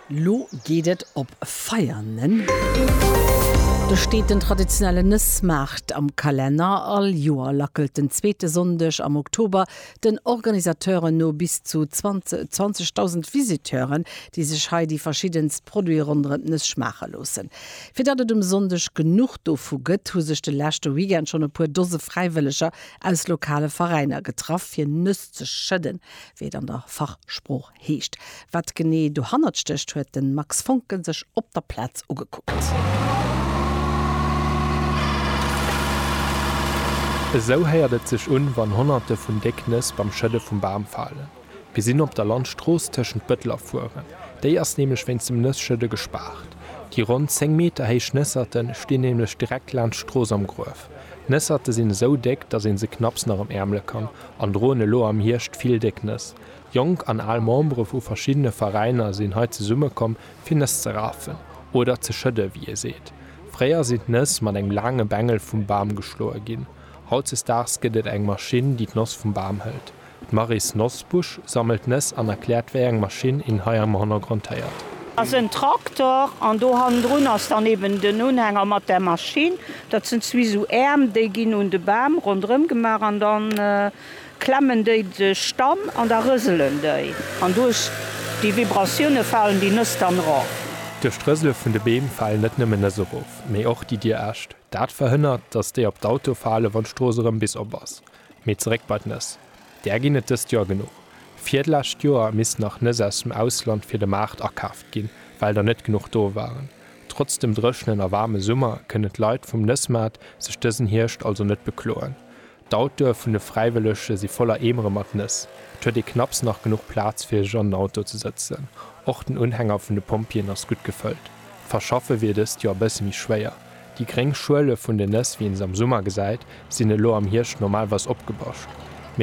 Lo geet et op Veianen. Do steet den traditionellen Nëssmaart am Kalenner. All Joer lackelt den zweete Sonndeg am Oktober den Organisateuren no bis zu 20.000 Visiteuren, déi sech hei déi verschiddenst Produite ronderëm d'Nëss schmaache loossen. Fir datt et um Sonndeg genuch dovu gëtt, hu sech de leschte Weekend schonn e puer Dose Fräiwëlleger aus lokale Veräiner getraff, fir Nëss ze schëdden, wéi et an der Fachsprooch Heescht, wat genee dohannert stécht, huet de Max Voncken sech op der Plaz ugekuckt. Esou héiert et sech un, wann Honnerte vun déck Nëss beim Schëdde vum Bam falen. Gesinn op der Landstrooss tëschent Bëtler fueren. Déi ass nämlech wéinst dem Nësschëdde gespaart. Déi ronn 10 Meter héich Nësserte stinn nämlech direkt laanscht d'Strooss am Gruef. Nësserte sinn esou déck, datt ee se knapps nach am Äermle kann an droen elo am Hierscht vill déck Nëss. Jonk an al Membere vu verschiddene Veräiner sinn hei zesummekomm, fir Nëss ze rafen, oder ze schëdden, wéi ee seet. Fréier sinn d'Nëss mat engem laange Bengel vum Bam geschloe ginn. Hautzesdaags gëtt et eng Maschinn, déi d'Noss vum Bam hëlt. D'Maryse Nosbusch sammelt d'Nëss an erkläert, wéi eng Maschinn een hei am Hannergrond héiert. Ass en Traktor, an do hannendrun ass dann eben den Unhänger mat der Maschinn. Dat sinn zwee esou Äerm, déi ginn un de Bam ronderëm gemaach, an dann klemmen déi sech dann an da rëselen déi an duerch déi Vibratioune falen déi Nëss dann erof. Duerch d'Rësele vun de Beem falen net nëmmen Nëss erof, mee och déi dir Äscht. Dat verhënnert, datt déi op d'Autoe falen, wann d'Strooss erëm bis op ass. Mee zeréck bei d'Nëss. Där ginn et dëst Joer genuch. Virdlescht Joer missten nach Nëss aus dem Ausland fir de Maart akaaft ginn, well der net genuch do waren. Trotz dem dréchenen a waarme Summer kënnen d'Leit vum Nëssmaart sech dësen Hierscht also net bekloen. D'Autoe vun de Fräiwëllege si voller Eemere mat Nëss. Et huet ee knapps nach genuch Plaz fir sech an den Auto ze sëtzen. Och den Unhänger vun de Pompjeeën ass gutt gefëllt. D'Verschaffe wier dëst Joer e bësse méi schwéier. Déi gréng Schuele vun den Nëss, wéi een se am Summer gesäit, sinn elo am Hierscht normalweis opgebascht.